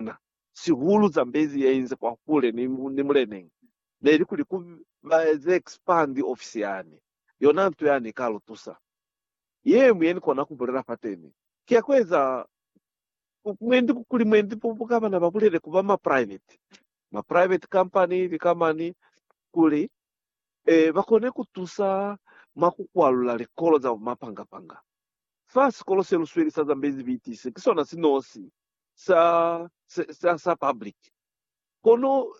na, sihulu Zambezi ya inze kwa hule ni, ni muleneñi, ne li kuli ku ba eze expand ofisi yani. Yona nto yani ika lu tusa. Yeñwi ye ni kona ku bulela fateni, ki ya ku eza mwendi kuli mwendi bu, bu ka ba na ba bulele ku ba ma private, ma private company, lika mani, kuli, eh, ba kone ku tusa mwa ku kwalula likolo za bumapanga-panga. Fa sikolo se lu sweli sa Zambezi BTC, ki sona si nosi sa, sa, sa, sa public. Kono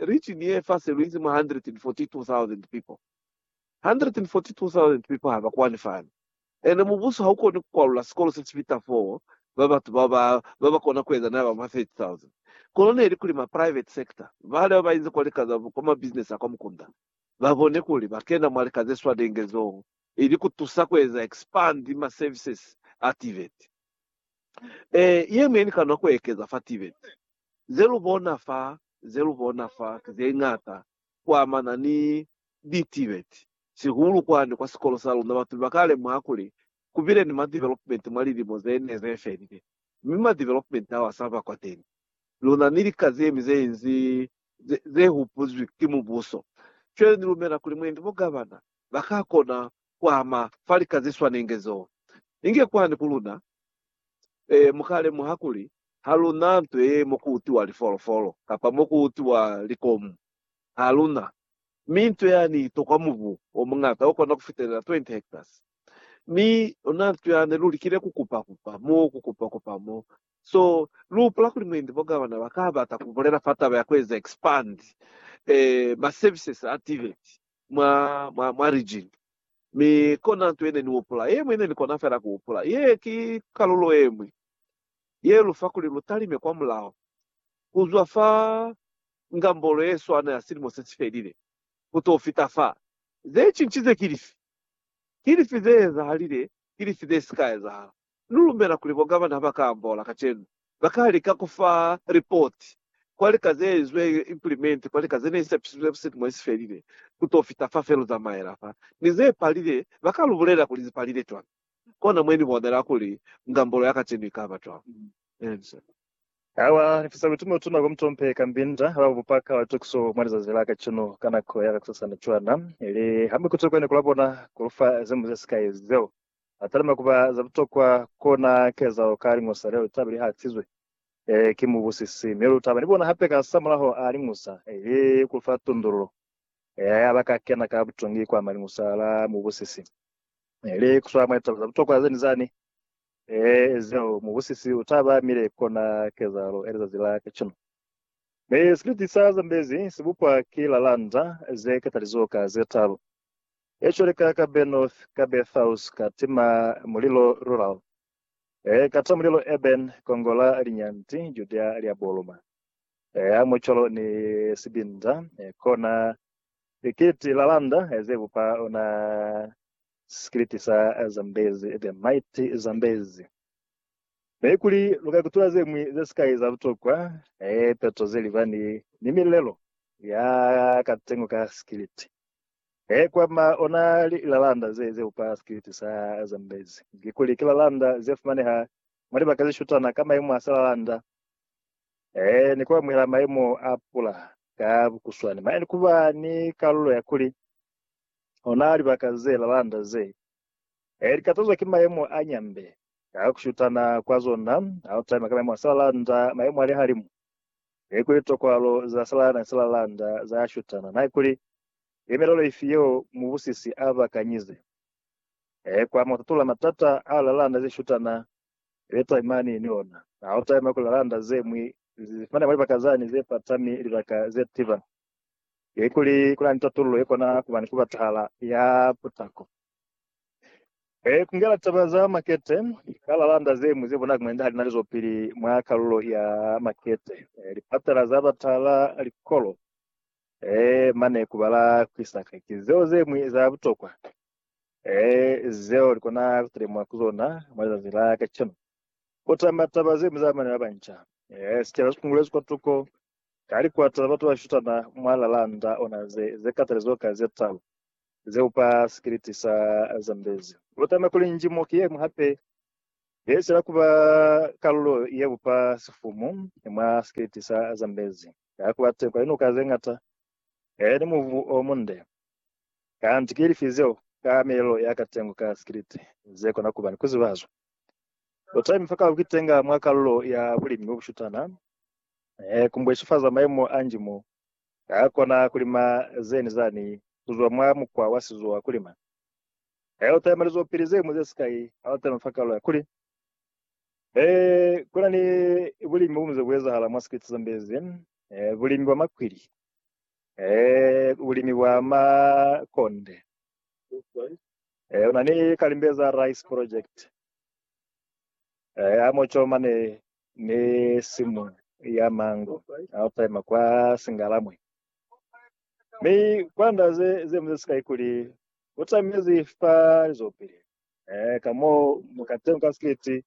region ye fase luinzi mwa 142,000 people. 142,000 people haba kwani fani. Ene mubuso haukoni kukwalula sikolo se sipita for ba batu ba ba ba ba kona kueza na ba mwa 30,000. Kono neli kuli ma private sector bale ba bainzi kwa lika za kwa ma business a kwa mukunda ba bone kuli ba kena mwa lika ze swanenge zoo ili kutusa kueza expand ma services a TVET. E, ye mwe ni ka nwa ku ekeza fa tive. Ze lu bona fa, ze lu bona fa ki ze ñata ku amana ni Ditibeti. Sihulu kwani kwa sikolo sa luna, batu ba ka lemuha kuli ku bile ni ma development mwa lilimo ze ne ze felile. Mi ma development ao a sa ba kwateni. Luna ni lika ze ñwi ze inzi ze, ze hupuzwi ki Mubuso. Cwale ni lumela kuli mwendi bo gavana ba ka kona kuama fa lika zeswanenge zo. Inge kwani ku luna, e, mukalemuha kuli ha lu na nto ye mo ku utiwa lifolofolo, kapa mo ku utiwa likomu. Ha lu na. Mi nto yani i tokwa mubu o muñata o kona ku fitelela 20 hectares. Mi u na nto ya ne lu likile ku kupa-kupa mo, ku kupa-kupa mo. So, lu hupula kuli mwendi bo gavana ba ka bata ku bulela fa taba ya ku eza expand, e, ma services a tiveti. mwa, mwa, mwa region. Mi kona nto yene nihupula, yemwi yene nikona fela kuhupula, ye ki kalulo yemwi ye lufa kuli lutalime kwa mulaho, kuzwa fa ngambolo yeswana ya silimo sesifelile kuto fita fa. Zecinchize ki lifi? Ki lifi zeezahalile? Ki lifi zesika ezahala? Lu lumela kuli bo gavana ha ba ka ambola kacenu, ba ka lika ku fa lipoti kwa lika ze izwe implimenti kwa lika ze ne i sepisizwe buseti mo i si felile ku to fita fa fe lu zamaela fa, mi ze palile ba ka lu bulela kuli zi palile cwañi. Kona mwe ni bonela kuli ngambolo ya kacenu i ka ba cwañi. Ha wa lifisa butume u tuna kwa mutompe ka mbinda ha ba bupa ka tukiso mwa lizazi la kacenu ka nako ya kakusasana cwana, ili ha mi ku tokwa ni ku la bona ku lu fa ze mu ze sikai zeo. a talima kuba za butokwa kona kezaho ka liñusa leo litaba li hatizwe ki mubusisi, mi lu taba ni bona hape ka sa mulaho a liñusa, ili ku fa tundululo ya ba ka kena ka butongi kwa maliñusa la mubusisi, ili ku swa mwa litaba za butokwa ze ni zani zeo mubusisi u taba mile kona kezahalo ya lizazi la kacenu. Mi sipiliti sa Zambezi si bupwa ki lalanda ze katalizo ka ze talu. Ecco lika ka Benoth, ka Bethaus, ka tima mulilo Rural, e ka ta mulilo Eben, kongo la linyanti Judea lia boluma, e a mucolo ni sibinda, e kona likiti la landa ze bupa ona sikiliti sa Zambezi, the mighty Zambezi. Ee, kuli lu ka kutula ze ñwi ze sikai za butokwa, ee, peto ze libani ni milelo ya ka tengo ka sikiliti. Ee, kwa ma ona lilalanda ze, ze upa sikiliti sa Zambezi, kikuli ki lalanda ze fumaneha mwa libaka ze shutana ka mayemo a silalanda, ee, ni ku amuhela mayemo a pula ka bukuswani, mane ni ku ba ni kalulo ya kuli ona libaka ze lalanda ze Ee, likatazwa ki mayemo a nyambe ka kushutana kwa zona. Hautaima ka mayemo a salalanda, mayemo a lihalimu, nekuli litokwalo za salalanda ni salalanda zayashutana. Naikuli ki milelo ifi yeo mubusisi abakanyize? Ee, kwa mututula matata a lilalanda zeshutana ze taimani ni ona. Hautaima kuli lilalanda zemwi lizifumane mwa libaka zani zepatami, libaka zetiba. Ki kuli kuna ni tatululo yekona kuba ni kubatahala ya putako. He kungela taba za makete ka lalanda zeñwi ze bonala kmenda halina lizopili mwa kalulo ya makete. Lipatala za batahala, likolo, he mane kubala kwisaka ki zeo zeñwi za butokwa he zeo likona kutelemwa ku zona mwa lizazi la kacenu. Kutama taba zeñwi za bana babanca. He sicaba sikungulezi kwatuko Ka likwata, batu ba shutana mwa lalanda ona ze, ze katalizo ka ze talu, ze upa sikiliti sa Zambezi. Lu tama kuli njimo ki yeñwi hape ye sila kuba kalulo ye upa sifumu mwa sikiliti sa Zambezi. Ka kuba teng kwa linuka ze ngata ni mubu o munde, kanti ki lifi zeo ka milelo ya katengo ka sikiliti ze kona kuba ni kuzibazwa? Lu tami fa ka kukitenga mwa kalulo ya bulimi bo bushutana He kumbweshifaza maimo a nji mo ha kona kulima zeni zani kuzwa mwa mukwa wa sizo wa kulima. He uta yamalizo pili zemu ze sikai ha uta no fa kalo ya kuli, He kuna ni bulimi bumu ze buezahala mwa sikete za mbezi, he bulimi bwa makwili, he bulimi bwa makonde, he una ni kalimbe za rice project, he amoco mane ni simu ya mango Alfheim kwa Singalamwe. Mi kwa nda ze, ze mu ze sikai kuli u tamezi fa lizobili. E, ka mo mu ka tenu ka siliti,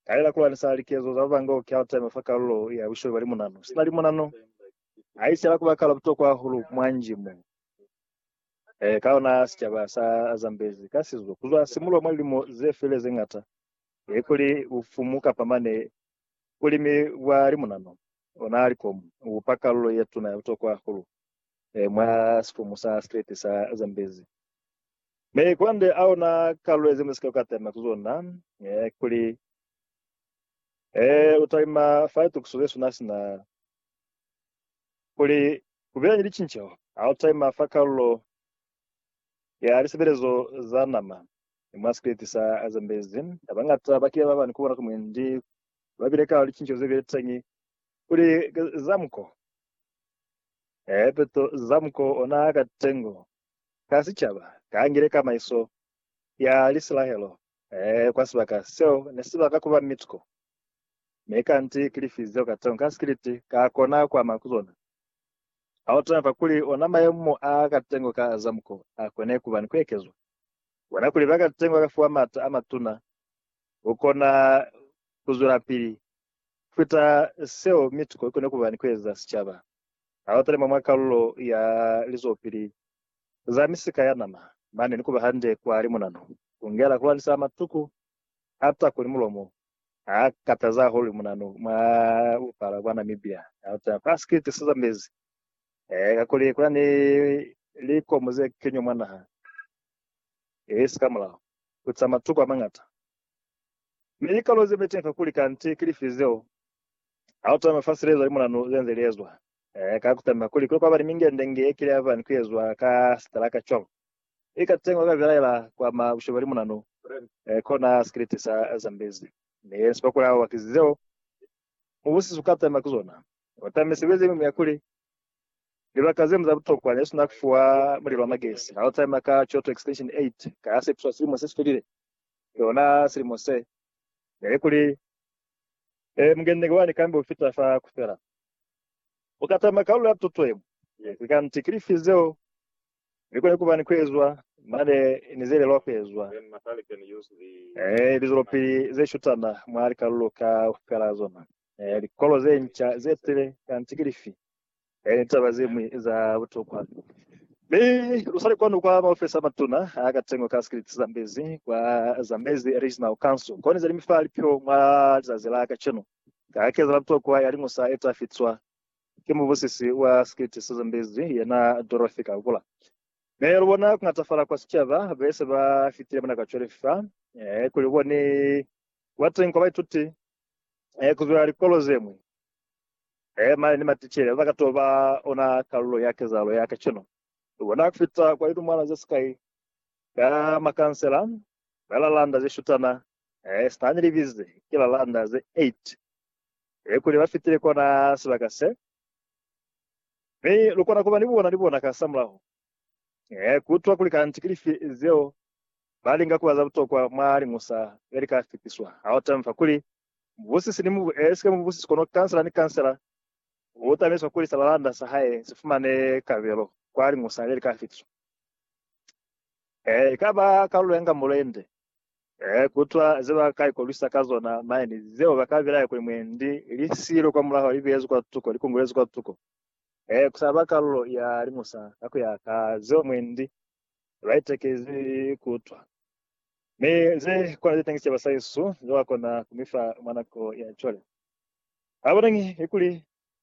ka lela kulwanisa likezo za Vangok ki Alfheim fa kalulo ya busholi bwa limunano. Sina limunano, a isela kuba kalo butokwa hahulu mwa nji mo. E, ka ona sicaba sa zambezi ka sizo kuzwa simulo mwa lilimo ze file ze ngata, e kuli bufumu kapa mane bulimi bwa limunanu, ona likomu, bubupa kalulo ye tuna ya butokwa hahulu mwa sifumu sa Streti sa Zambezi. Mi kwande a ona kalulo ye Zambezi ka kukatana ku zona, e kuli, E, utalima fa litukiso ze suna sina kuli kubelani licinceho, ha utalima fa kalulo ya lisebelezo za nama ni mwa sikiliti sa Zambezi. Babañata ba kile ba bani ku bona kuli mwendi ba bile ka licincezo ze bile teñi kuli Zamko, ee, peto Zamko ona ka tengo ka sicaba, ka ngile kamaiso ya Lisilahelo, ee, kwa sibaka seo ne si baka ku ba Mitsko, mi kanti ki lifi zeo ka tengo ka sikiliti ka kona ku ama ku zona. Ha u taba kuli ona mayemo a ka tengwa ka za muko a kone ku ba ni ku ekezwa, bona kuli ba ka tengwa ka fiwa m'ata a matuna ku kona ku zwelapili ku fita seo mi tuko i kone ku ba ni ku eza sicaba. Ha u talima mwa kalulo ya lizwelopili za misika ya nama mane ni ku ba hande kwa limunanu, ku ngela ku lwanisa matuku Hata kuli mulomo ha katazi hahulu munanu mwa bupala bwa Namibia, hata kwa sikiliti se zambezi, eh, kakuli kuna ni likomu ze kenywa mwa naha ye si ka mulao, ku za matuku amangata. Mi likalo ze beteni kakuli kanti ki lifi zeo, ha utama mafasi li ezwa li munanu ze nze li ezwa, eh, ka kutama kuli kule kwaba ni mingende nge ye kile yabani ku ezwa ka sitalaka cwalo. I ka teñwa ka belaela kwa ma bushe bali munanu eh, kona skiliti sa Zambezi. Mi ensi bakuli abo bakizi zeo mubusiso uka taima ki zona. Kota mi sebezi yeñwi ya kuli, libaka zeñwi za butokwa ne sina kufuwa mulilo wa magesi. Ha u taima ka Kyoto Extension 8 ka ya sepiswa silimo se si felile, yona silimo se, neli kuli, eh, mungenenge wani kambe u fita fa kufela. Uka taima kalulo ya tuto yeñwi. Ki kanti, ki lifi zeo Mi kone kuba ni kuezwa mane ni ze lelwa kuezwa, e lizwelopili ze shutana mwa likalulo kaufela za zona, e likolo ze nca ze tile, kanti ki lifi, e ni taba ze ñwi za butokwa. Mi lu sali kwanu kwa maofisi a matuna a katengo ka sikiliti za Mbezi, kwa Zambezi Regional Council, koni ze ni mi fa lipiho mwa lizazi la kacenu, ka kezela butokwa ya liñusa ye ta fitwa. Ki mubusisi wa sikiti sa Zambezi yena Dorothy Kahukula. Me lubona kungatafala kwa sicaba bese ba fitile mona ka cwale fa, eh, kuli kubone kuba teñi kwa baituti eh, kuzwa likolo zeñwi, eh, mane ni maticele baba ka to ba ona kalulo ya kezahalo ya kacenu. Lubona kufita kwa lilumwana zesikai ka makansela, balalanda zeshutana, Eh, sina ni libize ki la landa ze eight he kuli ba fitile kona sibaka se, mi lu kona kuba ni bona ni bona ka sa mulaho, eh, kutwa kuli kanti ki lifi zeo ba linga kuba za butokwa mwa liñusa le li ka fitiswa. Ha u tamfa kuli mubusisi ni mubu, eh, sika mubusisi, kono kansela ni kansela u tamiswa kuli sa la landa sa hae si fumane kabelo kwa liñusa le li ka fitiswa. Eh, ikaba kalulo ya nga mulende Eh, kutwa ze ba ka ikolwisa ka zona, maeni, zeo ba ka bilaya kuli mwendi, li silo kwa mulaho, li beyezwi kwa tuko, li kungulezwi kwa tuko. Eh, ku sa ba kalulo ya limusa, ka ku ya ka zeo mwendi, ba itekezi kutwa. Mi ze kona ze tangisisa basaisu, ze ba kona ku mi fa mwa nako ya cwale. Ha bonañi kuli